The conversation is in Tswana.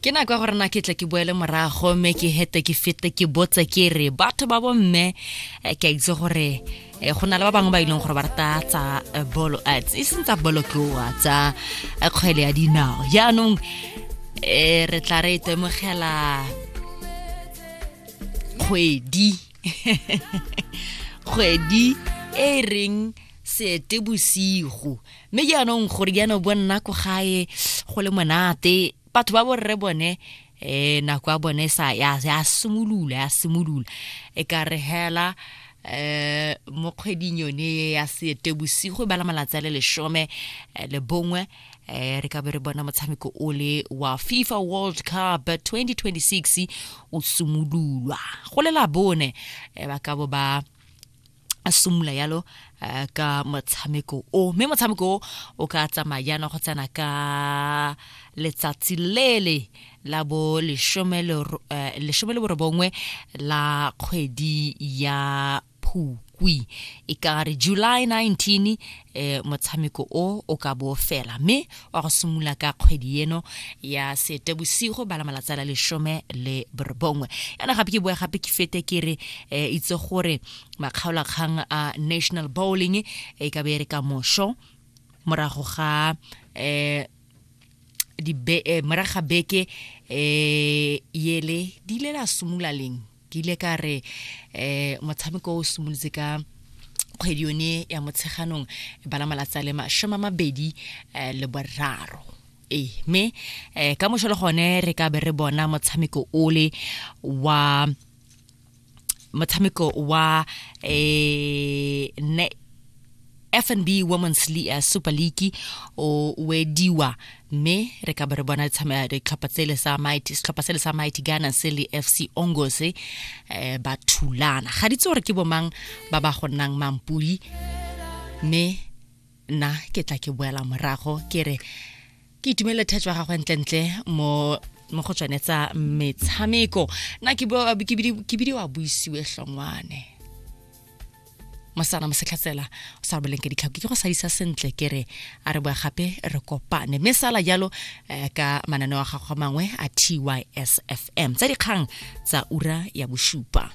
ke nako ya gore na ke tle ke boele morago mme ke hete ke fete ke botse ke re batho ba bomme eh, ke a itse gore eh, go na le ba bangwe ba e leng gore ba rata tsa eh, bolo e seng tsa bolo tloa tsa kgwele ya dinao jaanong um re tla re itemogela kgwedi kgwedi e reng seete bosigo mme jaanong gore jaana o bo nna ko gae go le monate batho ba borre bone eh nako ya bone sa ya ya simolola ya simolola e ka re hela eh mo kgweding yone ya sete bosigo e bala malatsi a le leshome eh, le bongwe eh re ka be re bona motshameko o le wa FIFA World Cup 2026 o simololwa go le la bone eh, ba ka bo ba a simolola yalo eh, ka motshameko o mme motshameko o o ka tsamaya jaana go tsena ka letsatsi lele la bo lesome le eh, borobongwe la kgwedi ya phukwi e ka re july 19 e motshameko o o ka bo fela mme wa go simolola ka kgwedi eno ya setebosigo bala malatsi a la lesome le borobongwe yana gape ke boa gape ke fete ke re e itse gore makgaolakgang a national bowling e ka be re ka mosho morago ga um moraga beke um yele di ile la simolola leng ke ile ka re um motshameko o simolotse ka kgwedi yone ya motsheganong bala malatsi a le masome a mabedi um le boraro ee mme um ka mošo le gone re ka be re bona motshameko ole wa motshameko wa um fnb women's uh, super league o wediwa mme re ka ba re bona ditlhopha tsele sa mighty setlhopha sele sa mighty gana se le fc ongos um eh, ba thulana ga ditse gore ke bomang ba ba go nnang mampudi mme nna ke tla ke boela morago ke re ke itumele thatso ya gagwe ntlentle mo mo go tsone tsa metshameko nna ke bidiwa buisiwe hlongwane mosana mosetlhatsela o sa boleng ke ditlhako ke go sadisa sentle ke re a re boa gape re kopane mme sala jalo eh, ka mananeo a gago mangwe a tysfm tsa dikgang tsa ura ya bosupa